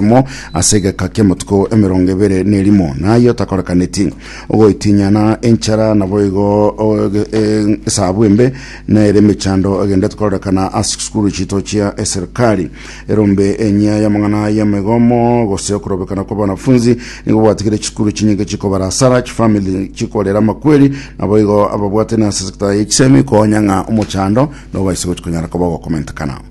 emo ase egeka ki'amatuko emerongo ebere nerimo, naye otakorekaneti, ogoitinyana, enchara, naboigo oge- e- esabu embe, nere emechando egenderete kororekana ase chisukuru chiito chia eserikari. Erombe enyia y'amang'ana y'emegomo gose okorobekana kw'abanafunzi nigo gwatigire chisukuru chinyinge chikobara asara, chifamili chikorera amakweri, naboigo ababwatani ase sector ya chisemi konya ng'a omochando nobaise gochi konyara koba ogokomentekana.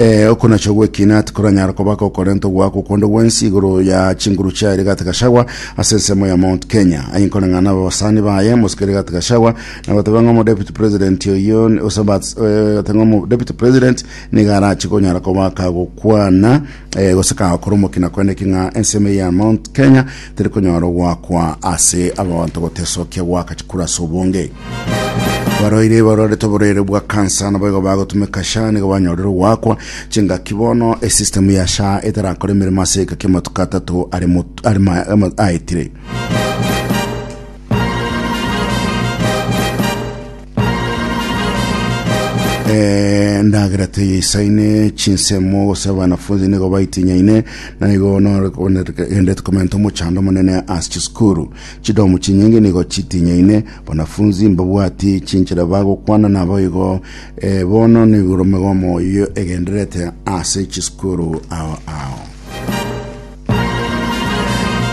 Eh, oko nacho gwekina tikoranyara koba kokorenta ogwaka okonde gwensi igoro ya chinguru chia Rigathi Gachagua ase ensemo ya Mount Kenya aye nkoreng'ana abasani baye mosike Rigathi Gachagua na goteba ng'a omo deputy president oyo ni- osabat eh, goteba ng'a omo deputy president niga arachi konyara koba kagokwana eh, gose kagokora omokina kwene ki ng'a ensemo ya Mount Kenya Tari konyora ogoakwa ase abanto gotesokia goaka chikura ase obonge. Barwaire barwarete oborwaire bwa kansa naboigo bagotumeka sha nigo banyorire ogoakwa chingaki bono esisitemu ya sha etarakora emeremo ase egeka kia amatuko atato are mot- are ma- ama- aetire endagera teyeisaine chinsemo gose abanafunzi nigo baitinyaine na igo nogendete komenta omochando omonene ase chisukuru chidomu chinyingi nigo chitinyaine banafunzi mbabwati chinchera bagokwana nabo igo eh, bono nigoro megomo iyo egenderete ase chisukuru ao ao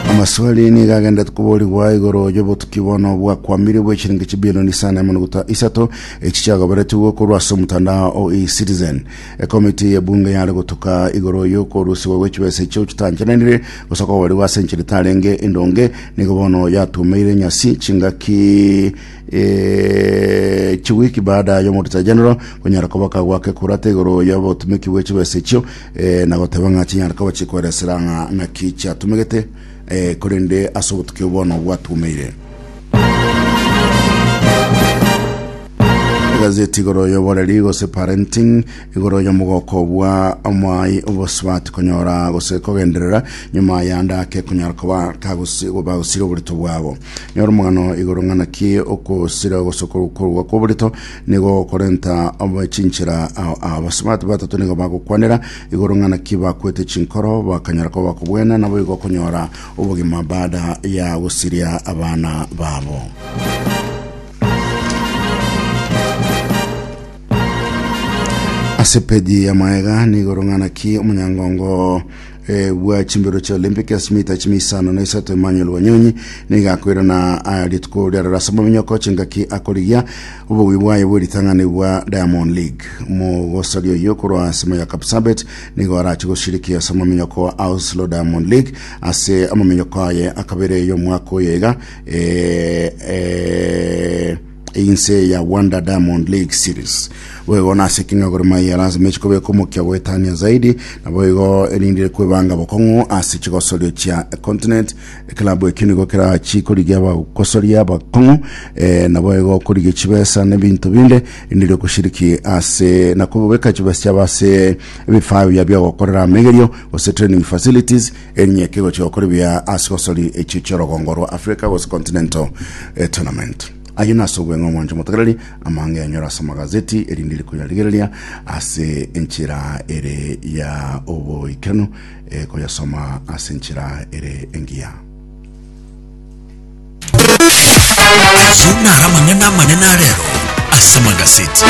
Amaswali nigo agenda koborigwa igoro y'obotuki bono bwakwamire bwa echiringi chibilioni isa na emerongo ta- isato echi chiagoberetigwe korwa ase omotandao o eCitizen. Ekomiti y'ebunge yare gotuka igoro y'okorusigwa gw'echibesa echio chitanchananire gose okoborigwa ase enchera etarenge endonge, nigo bono yatumeire nyasi chingaki eh, chiwiki baada y'omodita general konyara koba kagwaka ekurata igoro y'obotumeki bw'echibesa echio eh, na goteba ng'a chinyare koba chikoeresera ng'a naki chiatumegete, eh, korende ase obotuki obo bono gwatumeire. egazeti igoro y'oboreri gose parenting igoro y'omogoko bwa omwai obosibati konyora gose kogenderera nyuma ya ndake kunyara koba kagusi- bagusire oborito bwabo nyora omogano igoro ng'anaki okosira gose korwa korwa kw'oborito Nigo okorenta obe chinchera ao abasubati batato nigo bagokwanera igoro ng'a naki bakwete chinkoro bakanyora koba kobwena naboigo okonyora obogima baada ya gosiria abana babo. Ase peji ya maega nigoro ng'a naki omonyangongo Eh, bwa chimbero chia Olympic ase mita chime isano na isato Emmanuel Wanyonyi niga akoirana ah, rituko riarora ase mominyoko chingaki akorigia obogwi bwaye bwe ritang'ani bwa Diamond League mogosari oyo korwa ase moyo ya Kapsabet nigo arache goshiriki ase mominyoko wa Oslo Diamond League ase amominyoko aye akabere y'omwaka oyo iga eh, eh, Inse ya Wonder Diamond League Series boigo nase Kenya Gor Mahia lazima chikobeka omokia goetania zaidi na boigo erindire kwebanga bokong'u ase chigosorio chia continent ekilabu ekio nigo kerachi korigia bagosoria bakong'u eh, na boigo korigia chibesa na ebinto binde erindire okoshiriki ase na kobeka chibesa chiabo ase ebifaa bia biogokorera amegerio gose training facilities Erinyeke gochia gokora ebiya ase gosori echio chi'orogongo rwa Africa gose Continental eh, Tournament. Ayio nase obweng'e omwancho motegereri amang'e yanyora ase amagazeti erinde rikoyarigereria ase enchera ere ya oboikenu eh, koyasoma ase enchera ere engiya. Ayio naro amang'ana amanene arero ase amagazeti.